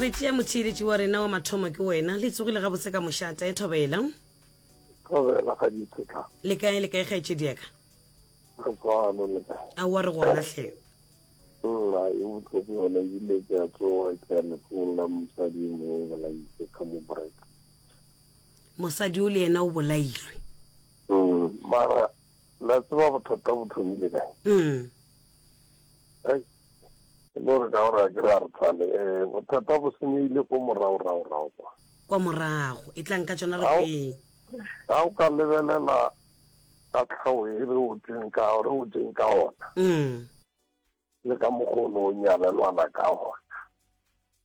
re tšea motheeletši wa rena wa mathomo ke wena le tsogile gabotse ka mošata e thobela thobela ga dithetla le kae le kae kgaetšedi yaka re tswano le kae a wa re gona hle nna e botlhoko yone ebile ke a tsoga ke ya lefong la mosadi e mongwe o bolaitse ka mo break mosadi o le yena o bolailwe mm, mara la tseba bothata bo thomile kae mm. E le gore ka gore a ke re a re thale, eh, bothata bo senyegile ko morago-rago-rago kwa. Kwa morago, e tlang ka tšona re kweng. Ga o ka lebelela ka tlhao e re o tseng ka, re o tseng ka ona. Mm. Le ka mokgwa o ne o nyalelwana ka ona.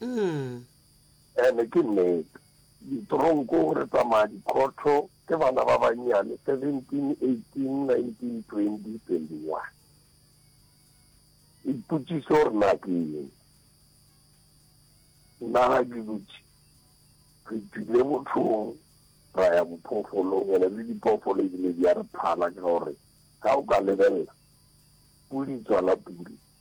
Mm. Ene ke nnete. Ditronko re tsamaya dikhotho ke bana ba bannyane 17, 18, 19, 20, 21. Ipotšiso gore na ke eng? Nna ga ke dutše re tswile mothong ra ya bophoofolong ene le diphoofolo ebile di a re phala ka gore ga o ka lebelela pudi tswala pudi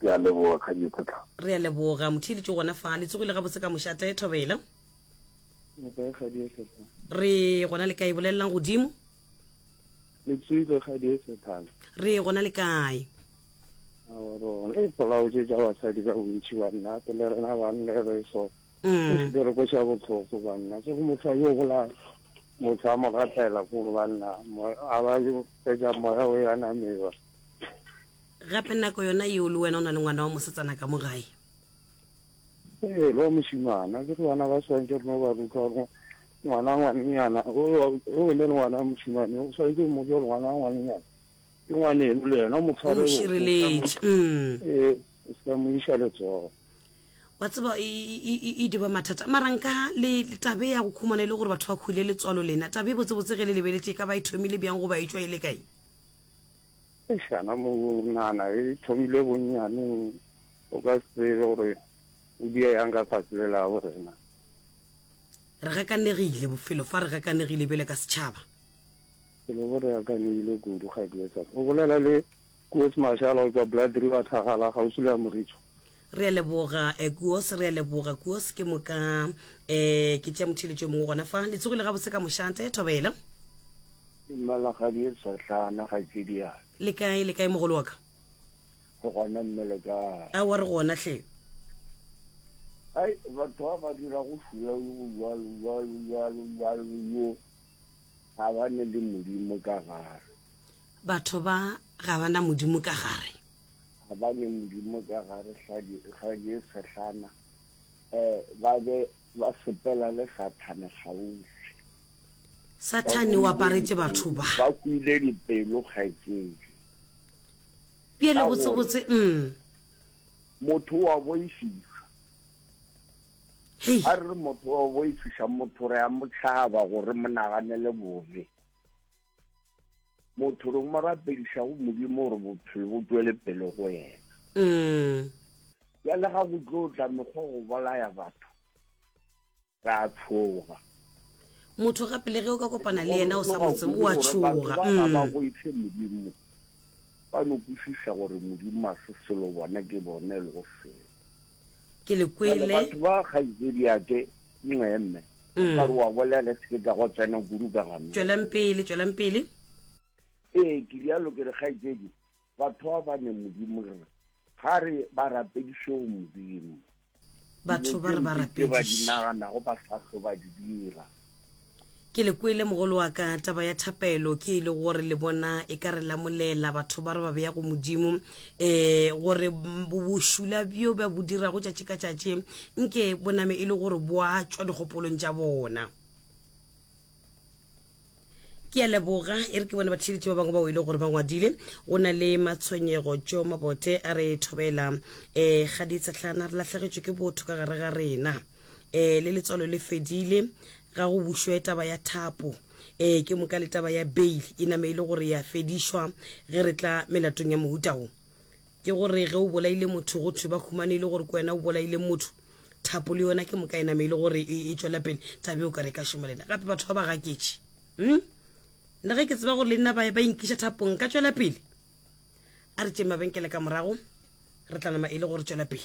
Ke a leboga Kganyi Kgotlang. Re a leboga. Motheeletšo gona fa. Le tsogile gabotse ka mošate, Thobela. Nkae kgadi e sethana? Re gona le kae bolelelang godimo? Le tswile kgadi e sethana? Re gona le kae? Rona e polaotse tša basadi ka bontši banna ke le rena banna re so mm. ke re ko xa botlhoko banna se go motho a yo bolaya motho a mo gatela ko banna a ba fetsa moya o ya nameba Gape nako yona yeo le wena o na le ngwana wa mosetsana ka mo gae. Ee, le wa mošemana. Ke re bana ba swantse rena o ba ruta gore ngwana ngwanenyana o ne le ngwana wa mošemane o swantse mo jo ngwana wa ngwanenyana ke ngwaneno le yena o mo tshware šireletše mm. ee o se ka mo iša letsogo wa tseba e, e, e, e diba mathata mara nka le tabe ya go khumana e le gore batho ba khuile letswalo lena tabe botsebotse ge le lebeletse e ka ba e thomile bjang go ba e tswa e le kae Ešana monana e thomile bonnyaneng, o ka se tsebe gore o dia yang ka fase le la bo rena. Re gakanegile bofelo fa re gakanegile bjale ka setšhaba. Ke le bo re gakanegile kudu Kgaetšedi Safo. O bolela le Koos Mashalo go tšwa Blood River Thakgala kgauswi le Amoricho. Re a leboga eh, Kuos, re a leboga Kuos, ke moka eh, ke tšea motheletšo mongwe gona fa. Le tsogile gabotse ka mošate, thobela. Malagadi e satlana ga ke diana. Le kae, le kae mogolo wa ka? Go gona mme le kae? A wa re gona hle. Ai, batho ba ba dira go fula go jalo, jalo, jalo, jalo, yo. Ga ba ne le modimo ka gare. Batho ba ga ba na modimo ka gare. ga ba ne Modimo ka gare ga je sehlana, ba be ba sepela le Sathane kgauswi. Sathane o aparetše batho ba. Ba kwile dipelo kgaetšedi. Bjale botsebotse, um. Motho wa boifiša. A re motho wa boifiša, motho re a mo tšhaba gore mo naganele bobe. motho re mo rapediša go modimo gore bophelo bo tswele pele go yena mm. ya le ga go tlo tla mekgwa go bolaya batho ra tshoga motho ga pele ge o ka kopana le yena o sa botse o a tshoga ba mm. go itse modimo ba no kwešiša gore modimo a se selo bona ke bone le go selo Ke le kwele. Bjale batho ba kgaitsediake, nxe mme, ka re wa bolela, ke se ke ka go tsena kudu ka gana. Tšwelang pele, tšwelang pele. Ee, ke rialo, ke re kgaitsedi, batho ba ba ne Modimo re re, ga re ba rapediše go Modimo. Batho ba re ba rapediše. Dilo tše mpe tše ba di naganago ba sa tlo ba di dira. Ke le kwele mogolo wa ka, taba ya thapelo ke e le gore le bona e ka re lamolela batho ba re ba beya go Modimo eh gore bošula bjo ba bo dirago tšatši ka tšatši nke bo name e le gore bo a tšwa dikgopolong tša bona. ke a leboga e re ke bone batheeletši ba bangwe bao e le gore ba ngwadile go na le matshwenyego tšeo mabote a re thobela um ga ditsetlana re lahlegetšwe ke botho ka gare ga rena eh le letswalo le fedile ga go bušwe taba ya thapo eh ke moka le taba ya bail e name e le gore ya fedišwa ge re tla melatong ya mohuta wo ke gore ge o bolaile motho go thwe ba humane e le gore ke wena o bolaile motho thapo le yona ke moka e name e le gore e, e tšwela pele tabe o ka re ka šoma lena gape batho ba ba gaketše mm? le ge ke tseba gore le nna ba ba inkiša thapong ka tšwela pele a re tšeng mabenkele ka morago re tla nama e le gore tšwela pele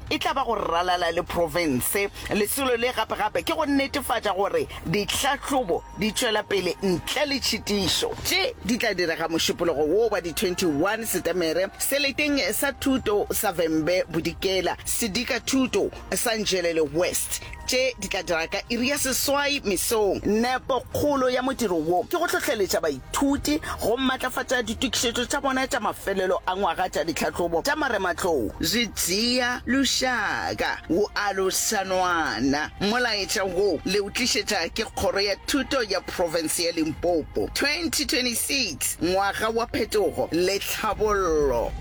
e tla ba go ralala le profense. Lesolo le gape-gape ke go netefatša gore ditlhahlobo di tšwela pele ntle le tšhitišo. Tše di tla direga mošupologo wo wa di 21 Setemere seleteng sa thuto sa Vhembe Bodikela, Sedika Thuto sa Njelele West. tše di tla dira ka iri ya seswai mesong. Nepo kgolo ya modiro wo ke go hlohleletša baithuti go matlafatša ditokišetšo tša bona tša mafelelo a ngwaga tša ditlhahlobo tša marematlou. Re tšea lušaka, go aloša Nwana. Molaetša wo le o tlišetša ke Kgoro ya Thuto ya Profense ya Limpopo. 2026, Ngwaga wa Phetogo le Tlhabollo.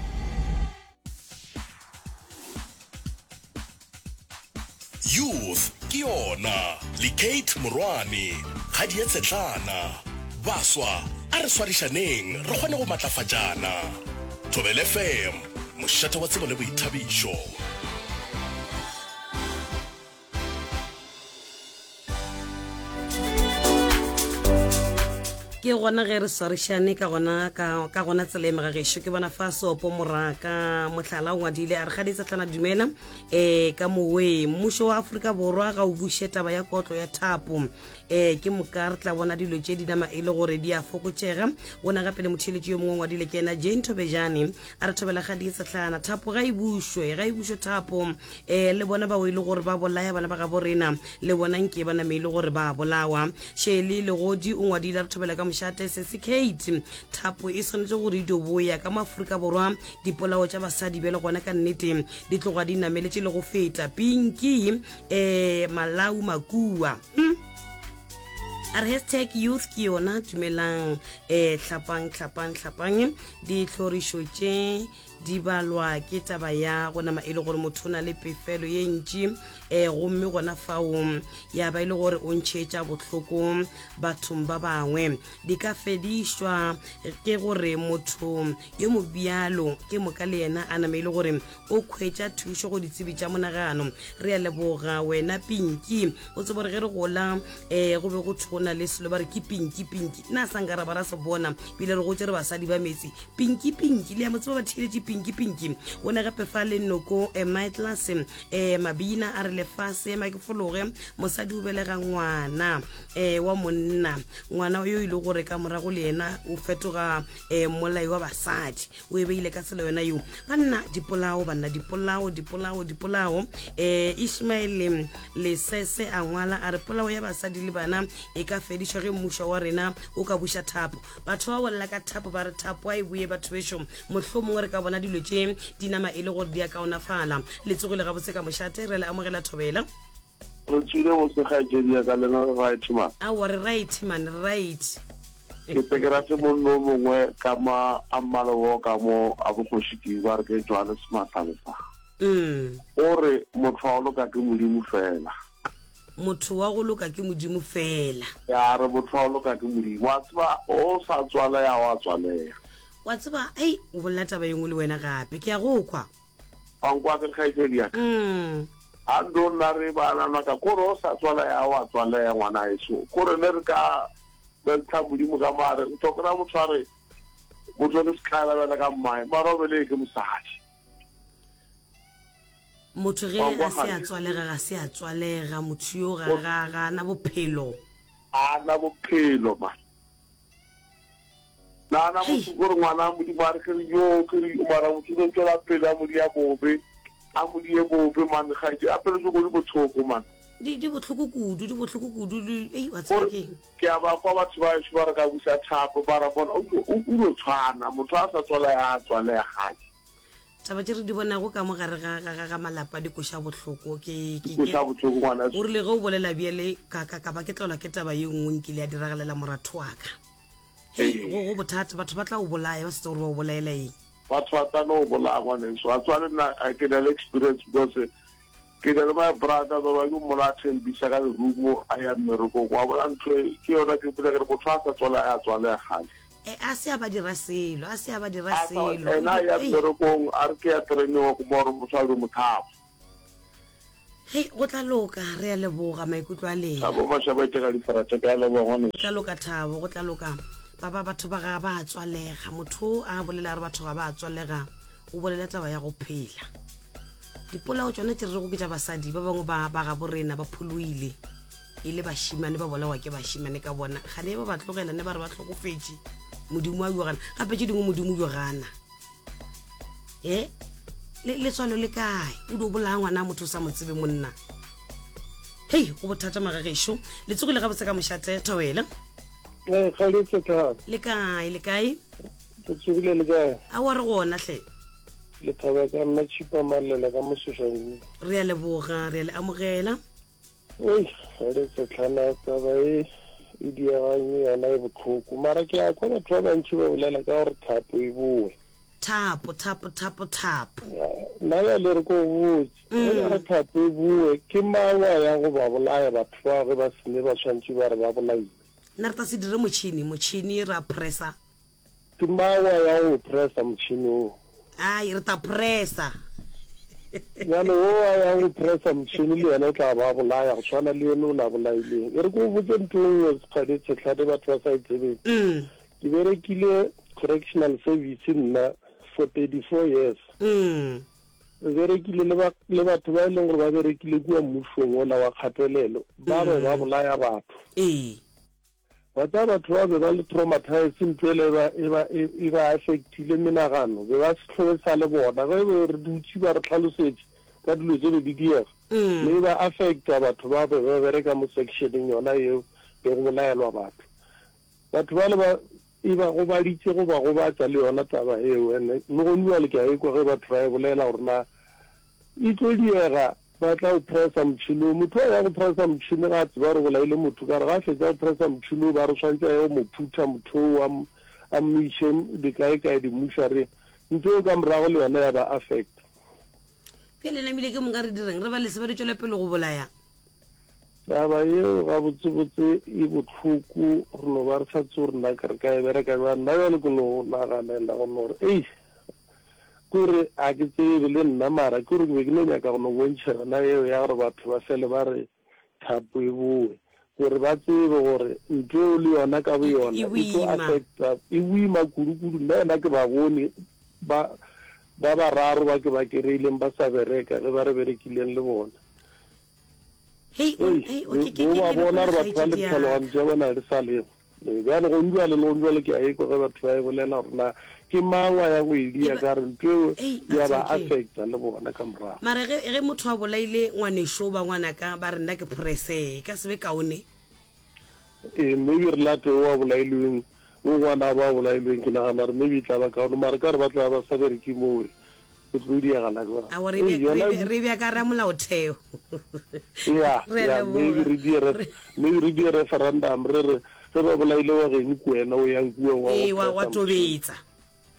Youth ke yona le Kate Morwane kgadi ya Tshetlana. Baswa a re swarišaneng re kgone go matlafatšana. Thobel FM, mošate wa tsebo le boithabišo. ke gona ge re swarišane ka gona ka ka gona tsela e megageso ke bona fa sopo moraka mohlala o ngwadile a re ga ditsetlana dumela um ka moweng mmušo wa aforika borwa ga o buše taba ya kotlo ya thapo um ke moka re tla bona dilo tše di nama e le gore di a fokotšega ona gape le motheletši yo mongwe ngwadile ke ena jane thobejane A re thobela ga di sehlana thapo ga e bušwe ga e bušwe thapo e le bona ba o ile gore ba bolaya bana ba ga borena le bona nke ba name ile gore ba bolawa shele le godi o ngwadile a re thobela ka mošate se se kate thapo e swanetse gore e doboya ka maafrika borwa dipolao tša basadi bjale gona ka nnete di tloga di nameletse le go feta pinki um eh, malau makua hmm? a re hashtag youth ke yona dumelang um tlhapang tlhapang tlhapang ditlhorišo tše di balwa ke taba ya go nama e le gore motho o na le pefelo ye ntši um eh, gomme gona fao ya ba e le gore o ntšheetša bohloko bathong ba bangwe di ka fedišwa ke gore motho yo mobjalo ke moka le yena a nama e le gore o khwetša thušo go ditsebi tša monagano re a leboga wena pinki o tsebo re ge re gola um go be go thona le selo ba re ke pinki pinki nna sa nka ra ba ra se bona pele re gotse re basadi ba metsi pinki pinki le ya motsebo ba thieletse pinki pinki o ne gape fa le noko um my class um mabina a re lefase ma ke fologe mosadi o belega ngwana um wa monna ngwana yo e le gore ka morago le yena o fetoga um molai wa basadi o e beile ka tsela yona yo banna dipolao banna dipolao dipolao dipolao um eh, ismaele lesese a ngwala a re polao ya basadi le bana e ka fedišwa ge mmušo wa rena o ka buša thapo batho ba bolela ka thapo ba re thapo a e boye batho bešo mohlho mongwe re ka bona dilo tše dinama e le gore di a kaonafala letsogile gabotse ka mošate re le amogela thobela Re tswile go se kgaetšedi ya ka le na re right man? Aowa re right man, re right. Ke tse ke rate monno o mongwe ka ma a mmala wo ka mo a bokgoši ke ba re ke jwale sematha le sa. Umm. O re motho wa go loka ke Modimo fela. Motho wa go loka ke Modimo fela. Ya re motho wa go loka ke Modimo. Wa tseba o sa tswalea wa tswalea. Wa tseba, ai o bolela taba e nngwe le wena gape. Ke a go kwa. wa nkwa ke kgaetšedi ya ka mm. a ndo nna re banana ka kore o sa tswala ya wa tswala ya ngwana eso kore ne re ka bentsha modimo ka mare o tlhokera motho a re motho le setlala bjala ka mmae mara o bele ke mosadi motho ge ga se a tswalega ga se a tswalega motho yo ga ga na bophelo a na bophelo ma Nagana go se gore ngwana a Modimo a re ke re yoo ke re mara motho no tšwela pele a modi ya bobe a modi ye bobe man ga di apelo se go di bothoko man di di botlhoko kudu di botlhoko kudu di ei wa tsaya ke ke a ba kwa batho ba se ba re ka busa thapo ba ra bona o o no tshwana motho a sa tswala ya tswala ya gadi taba tše re di bonago ka mo gare ga ga ga ga malapa di koša bohloko ke ke ke Koša bohloko ngwana. o rile ge o bolela bjale ka ka ka ba ke tlolwa ke taba ye nngwe nkile ya diragalela moratho wa ka hei Ee. go go bothata batho ba tla o bolaya ba setse gore ba o bolaela eng Batho ba tla no bolaya ngwaneso. Wa tseba le nna I can have experience because eh, Ke na le my brother baba ke mmola a thembisa ka lerumo a ya mmerekong wa bona ntho e ke yona ke mpotsa ke re motho a sa tswala ya tswala ya gale E a se a ba dira selo a se a ba dira selo ena ya mmerekong a re ke ya training wa kuma gore motho a be mothabo Hei go tla loka re ya leboga maikutlo a lena thabo mashaba ke ga difarate ka leboga ngwane go tla loka thabo go tla loka baba batho ba ga ba tswalega motho a bolela re batho ga ba tswalega o bolela taba ya go phela dipolao tsona tse re rego ke tša basadi ba bangwe ba ba gabo rena ba pholoile e le bašimane ba bolawa ke bašimane ka bona ga ne ba ba tlogela ne ba re ba tlhokofetše modimo a yogana gape tše dingwe modimo yogana e letswalo le kae o di o bolaya ngwana motho o sa mo tsebe monna hei go bothata magagešo le tsogile gabotse ka mošate thobele le kae le kae Le tsogile le kae? Aowa re gona hle. Lethaba ka nna Tšhipa Mallela ka Moseša ruri. Re a leboga, re a le amogela. Wei, ga re setlhana taba e e diaganyo yona e botlhoko mara ke a kwa batho ba bantši ba bolela ka gore thapo e bowe. Thapo, thapo, thapo, thapo. Nna bjale re ko botse, ge ba re thapo e bowe ke mang wa ya go ba bolaya batho bao ge ba sene ba swantše ba re ba bolailwe? Nna re tla se dire motšhini, motšhini ra pressa. Ke mawa ya go pressa motšhini wo. Ai, re tla pressa. Bjale wo wa ya go pressa motšhini le yena o tla ba bolaya go swana le yeno o la bolaileng. E re ke go botse ntho e nngwe Sekgadi Tshetlhane batho ba sa e tsebeng. Ke berekile correctional service nna for thirty four years. Re berekile le batho ba e leng gore ba berekile kua mmusong ola wa kgatelelo ba be ba bolaya batho. Bata batho ba be ba le traumatized ntho ele eba eba eba affectile menagano be ba sehloe sa le bona ge be re dutse ba re tlhalosetše ka dilo tše be di diega mm. le ba affecta batho ba be ba bereka mo sectioneng yona yeo be go bolaelwa batho batho ba le ba e ba go baditse go ba go batsa le yona taba eo ene le go nwa le ka ekwa ge batho ba e bolela gore na e tlo diega Ba tla o pressa motšhini wo. Motho wa ya go pressa motšhini ga a tseba gore bolaile motho ka re ga a fetsa go pressa motšhini wo ba re swantse a ye go mo phutha motho wo a mmiše dikae kae dimušareng. Ntho eo ka morago le yona ya ba affecta. Bjale namile ke moka re direng? Re ba leseba re tšwele pele go bolaya? Taba yeo gabotse botse e bohloko re no ba re sa tsebe gore na ke re ka e bereka bjang. Nna bjale ke no naganela go no re eish. Ke re, Ga ke tsebe le nna, mara ke gore ke be ke no nyaka go no bontšha yona yeo ya gore batho ba fele ba re thapo e bowe, gore ba tsebe gore ntho yeo le yona ka boyona e tlo affecta, e boima kudu-kudu. Nna yena ke ba bone ba ba bararo ba ke ba kereileng ba sa bereka ge ba re berekileng le bona. Hei, o, hei, o, ke, ke, ke, ba bona re batho ba le ditlhalogano tša bona re sa lego bjale go ntwa le lego jale ke a ekwa ge batho ba e bolela gore na ke mang wa ya go e dia ka re ntho eo ya ba affecta le bona ka morago mara ge ge motho a bolaile ngwaneso ba ngwana ka ba re nna ke prese e ka sebe kaone ee maybe re late o a bolailweng o ngwana ba bolailweng ke nagana re maybe e tla ba kaone mara ka re ba tla ba sa bereke mowe It's really a gala go. Awo re be re be re be ka ra molaotheo. Yeah, yeah, maybe re di re maybe re di referendum re re re ba bolaile wa geng ku wena o yang kuwa wa. Ee wa wa tobetsa.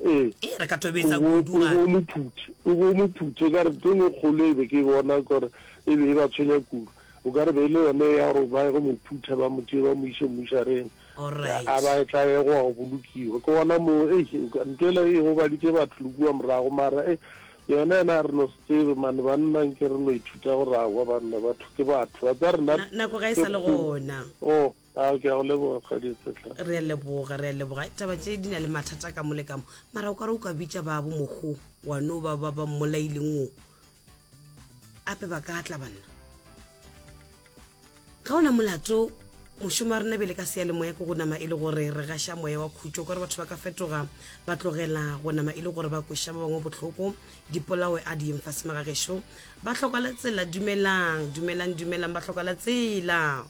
Ee. Ee re ka tobetsa kudu ga. O mo phuthe, o go mo phuthe ka re teng kgolo e be ke bona gore e be e ba tshwenya kudu. O ka re be le yone ya gore ba go mo phutha ba mo tšee ba mo ise mmushareng. a ba etla e go wa go bolokiwa ke gona mo ei ntho ela e gobaditše batho le kua morago mara e yona yena a re no se tsebe mane banna nke re no ithuta go ragwa banna batho ke batho ba tsa rena nako ga e sa le gona o oh, a ke a go leboga kgadi tsetla re a leboga re a leboga taba tše di na le mathata ka mo le kamo mara o ka re o ka bitša babo mogo wa no ba ba ba mmolaileng o ape ba ka tla banna ka ona molato mošomo wa rena bele ka seyalemoya ke go nama e le gore re gaša moya wa khutšo ka gore batho ba ka fetoga ba tlogela go nama e le gore ba kweša ba bangwe bohloko dipolawe a di yeng fase magagešo ba tlhoka la tsela dumelang dumelang dumelang ba tlhoka la tsela